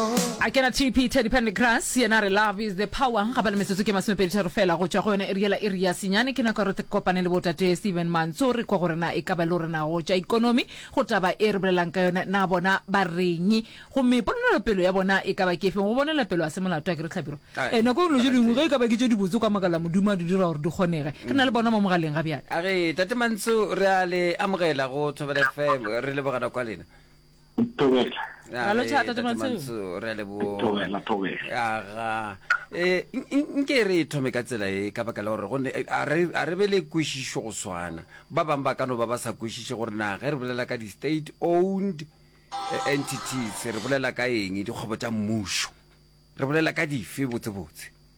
A kena TP Teddy Pendergrass yena a re love is the power. Ga ba le metsotso ke masomepedi tharo fela go tšwa go yone iri yela iri ya senyane. Ke nako ya gore re kopane le botate Stephen Mantso re kwa gore na e ka ba le gore na go tša ikonomi go taba e re bolelang ka yone na bona ba reng gomme ponelopelo ya bona e ka ba ke efeng. Go bonela pelo a se molato a ke re Tlhabiro. E nako dilo tše dingwe ge e ka ba ke tše dibotse kwa makala Modimo a di dira gore di kgonege. Re na le bona mo mogaleng ga bjale. A re Tate Mantso re a le amogela go Thobela FM re lebogana kwa lena. nke re e thome ka tsela e ka baka la gore gonne eh, a re be le kwešišo go swana ba bangwe ba ka no ba ba sa kwešiše gore na ge re bolela ka di-state owned eh, entities re bolela ka eng dikgwebo tša mmušo re bolela ka dife botsebotse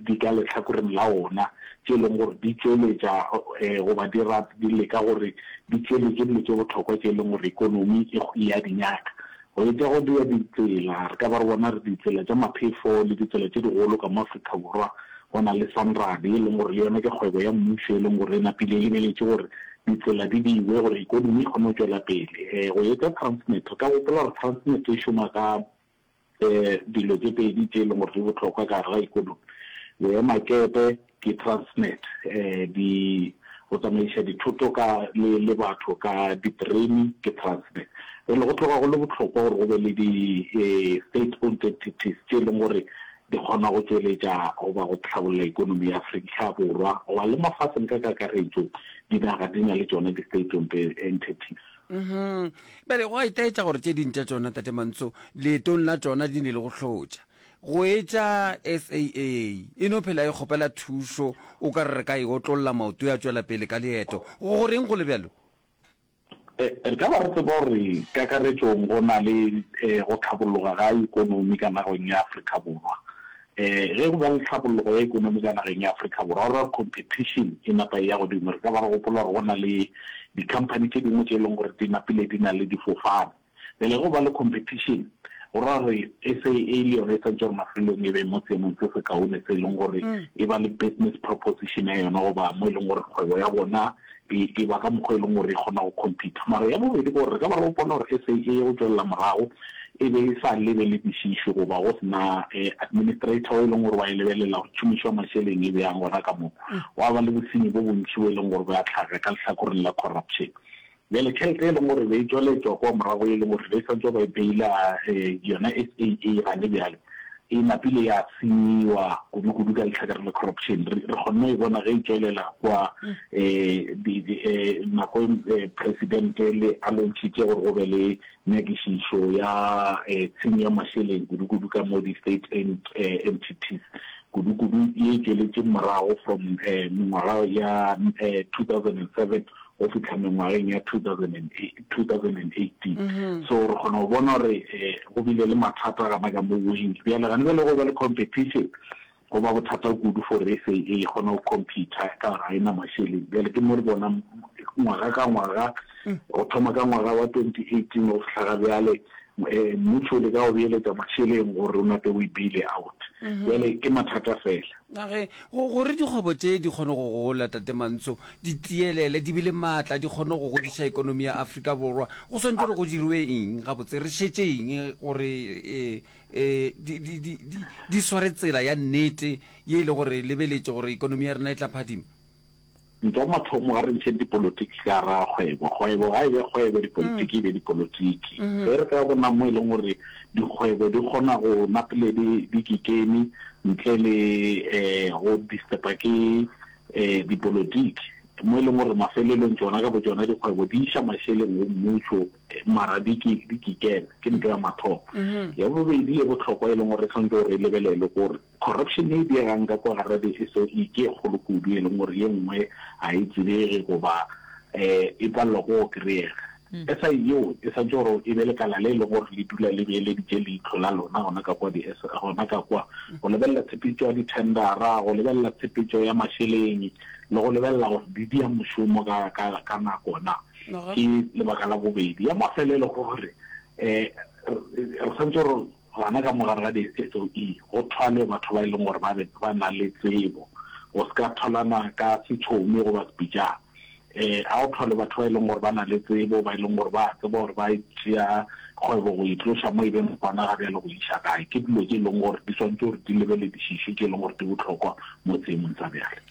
di ka lehlakoreng la wona, tše e lego gore di tšweletša goba di rata, di leka gore di tšweletše dilo tše bohlokwa tše e lego gore ekonomi e a di nyaka. Go etša go bea ditsela, re ka ba re bona re ditsela tša maphefo le ditsela tše digolo ka mo Afrika Borwa, go na le Sanrad e lego gore le yona ke kgwebo ya mmušo e lego gore e napile e lebeletše gore ditsela di beiwe gore ekonomi e kgone go tšwela pele. Go etša Transnet, re ka gopola gore Transnet e šoma ka dilo tše pedi tše e leng gore di bohlokwa ka gare ga ikonomi. Boemakepe ke Transnet, di go tsamaiša dithoto ka le le batho ka diterene ke Transnet. Jwale go tloga go le bohlokwa gore go be le di state owned entities tše e leng gore di kgona go tšweletša goba go hlabolla ikonomi ya Afrika Borwa goba le mafatsheng ka kakaretšo, dinaga di na le tšona di state owned entities. Uhum, bjale go a itaetša gore tše ding tša tšona, Tate Mantso, leetong la tšona di ne le go hlotša go etša SAA. E no phela e kgopela thušo, o ka re re ka e otlolla maoto ya tšwela pele ka leeto. Go go reng go le bjalo? E, re ka ba re tseba gore kakaretšong go na le e, go tlhabologa ga ikonomi ka nagong ya Afrika Borwa. Ee, ge go ba le tlhabologo ya ekonomi ka nageng ya Afrika Borwa, rora competition e napa e ya godimo. Re ka ba re gopola gore go na le di-company tše dingwe tše e leng gore di napile di na le difofane. Bjale ge go ba le competition, go ra gore SAA le yona e swantšwe gore mafelelong e be mo seemong se sekaone se e leng gore e ba le business proposition ya yona goba mo e leng gore kgwebo ya bona e eba ka mokgwa e leng gore e kgona go compete. Mara ya bobedi ke gore re ka ba re gopola gore SA e ye go tšwelela morago e be e sa lebe le dišišo goba go se na administrator o e leng gore wa e lebelela gore tšhomišo ya mašeleng e bjang gona ka moo. Gwa ba le bosenyi bo bontši bo e leng gore bo ya tlhaga ka lehlakoreng la corruption. Bjale tšhelete e leng gore e be e tšwela e tšwa kwa morago e leng gore e be e sa ntše ba e beila yona SA e irane bjale, e napile ya senyiwa kudukudu ka lehlakare la corruption. Re kgonne go e bona ge e tšwelela kwa nako Presidente le a lontšhitše gore go be le nyakišišo ya tshenyo ya mašeleng kudukudu ka mo di-state aid entities kudukudu ye e tšweletšeng morago from mengwaga ya 2007 go fihla mengwageng ya 2018 so re kgona go bona gore eh, go bile le mathata gana ka mo wing bjale gane bjale go ba le competition go ba bothata kudu for sa e kgona go compete ka ga e na masheleng bjale ke mo re bona ngwaga ka ngwaga mm. go thoma ka ngwaga wa 2018 go fihla ga bjale eh, mmuso le ka go beeletsa masheleng gore o nape o e beile out mm-hmm. bjale ke mathata fela A re, Gore dikgwebo tše di kgone go gola, Tate Mantso, di tielele, di be le maatla, di kgone go godiša ekonomi ya Afrika Borwa, go swanetše gore go dirwe eng gabotse? Re šetše eng gore e, e, di, di, di, di, di sware tsela ya nnete ye e le gore lebeletše gore ekonomi ya rena e tla phadima? Nto mathomo ga re ntšheng dipolotiki ka gara kgwebo. Kgwebo ga e be kgwebo, dipolotiki e be dipolotiki. Ge re ka bona mo e leng gore dikgwebo di kgona go napile di di kikemi ntle le um go disturb-a ke um dipolotiki, mo e leng gore mafelelong tšona ka botšona dikgwebo di iša mašeleng go mmušo mara di ke di kikeme, ke nto ya mathomo. Ya bobedi e bohlokwa e leng gore re tshwanetse gore e lebelelwe ke gore Corruption ye e diegang ka kwa gare be e se e ke e kgolo kudu e leng gore ye nngwe ga e tsebege goba e palelwa ke go kry-ega. SI yeo e swantšwe gore e be lekala le e leng gore le dula le beeleditše leihlo la lona gona ka kwa gona ka kwa go lebelela tshepetšo ya dithendara, go lebelela tshepetšo ya mašeleng le go lebelela gore di dia mošomo ka nako na. Ke lebaka la bobedi. Ya mafelo e le gore re swantšwe gore Gona ka mo gare ga di-SOE go thwalwe batho ba e leng gore ba be ba na le tsebo, go se ka thwalana ka setšhomi goba sepitšana. Um, a go thwalwe batho ba e leng gore ba na le tsebo, ba e leng gore ba a tseba gore ba e tšea kgwebo go e tloša mo e beng gona ga bjale go e iša kae. Ke dilo tše e leng gore di swanetše gore di lebeledišišwe, tše e leng gore di bohlokwa mo seemong sa bjale.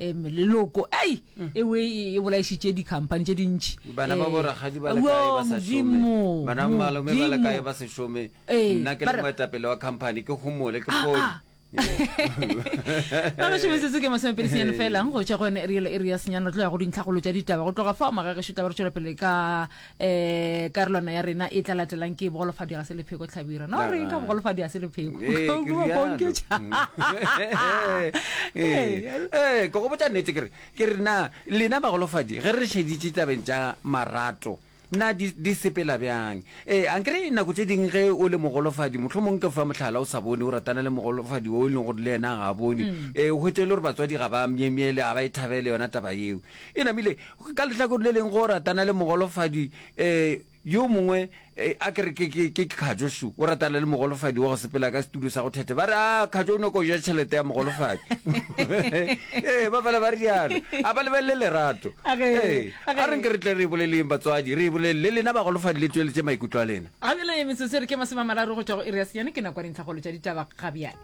um leloko ei ewe e bolaišitše dikhamphane tše dintši bana ba borakgadi ba lekae ba sa šome bana malome ba lekae ba se šome nna ke le moetapele wa khamphane ke gomole ke fone magašo metsotso ke masomepedi senyane fela go tšwa go yone e rielo e re ya senyane re tlo ya go dintlhagolo tša ditaba go tloga fao magagešu taba re tšwela pele ka eh karolwana ya rena e tla latelang ke bogolofadi ga se lepheko tlhabira no re ka bogolofadi ga se lepheko ee ke go botsa nnete kere ke re na lena bagolofadi ge re šeditše tabeng tša marato na di, di sepela bjang ee a nkere nako tse ding ge o le mogolofadi motlho mongwe ke fa motlhala o sa bone o ratana le mogolofadi o e leng gore le ena ga a bone um mm. eh, o hwetse e le gore batswadi ga ba myemyele ga ba e thabele yona taba eo E namile, ka lehlakore le leng, go ratana le mogolofadi yo mongwe. A ke re ke Khajo su o ratana le mogolofadi wa go sepela ka setulo sa go thethe. Ba re, a Khajo o nyoko o ja tšhelete ya mogolofadi. Ee, ba fela ba re jalo. A ba lebelele lerato. Ee, a re nke re tle re e boleleng batswadi, re e bolelele lena bagolofadi le tšweletše maikutlo a lena. Ga bjale metsotso e re ke masome a mararo go tšwa go iri ya senyane, ke nako ya dintlhakgolo tša ditaba ga bjale.